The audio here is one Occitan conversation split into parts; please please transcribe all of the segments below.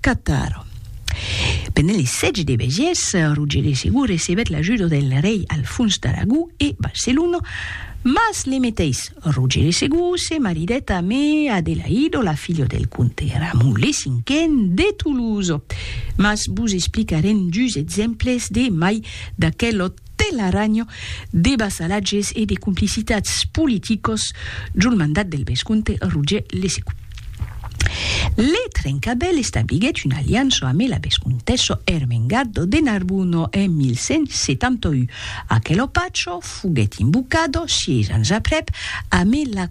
Cataro. Pendent le sètge de Béziers, Roger de Segur recebèt l'ajuda del rei Alfons d'Aragó e Barcelona, mas le meteis Roger de Segur se maridèt amé Adelaido, la filha del comte Ramon le Cinquen de Toulouse. Mas vos explicarem dus exemples de mai d'aquel òt. Telaranho, de vassalatges e de complicitats politicos jo l mandat del vescomte Roger le Segon. Le Trencabèl establiguèt una aliança amé la vescomtessa Ermengarda de Narbona en 1171. Aquelo pacho foguèt invocado, sièis ans aprèp, amé la.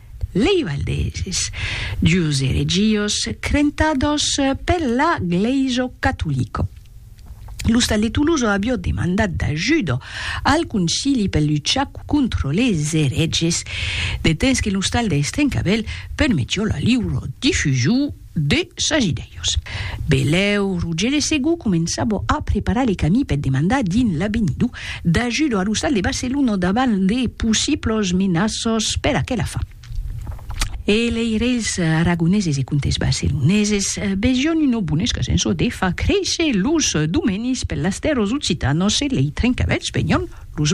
Lei Valdeses, dus eregios crentados per la Glèiso Catolico. L'ostal de Tuluzo avió demandat d'ajudo al Concili per luchar contro les ereges, de temps que l'ostal de Estrencavèl permetió la liura difusiu de sas idèios. Belèu, Roger de Segou començava a preparar le camí per demandar dins l'Avenido d'ajuda a lo stat de Barcelona davant de possiblos menaços per aquela fin. E lei reis aragoneses e comtes barceloneses vesión una bona escasença de far créisser los domenis per las tèrras occitanas e lei trencavèlhs venión los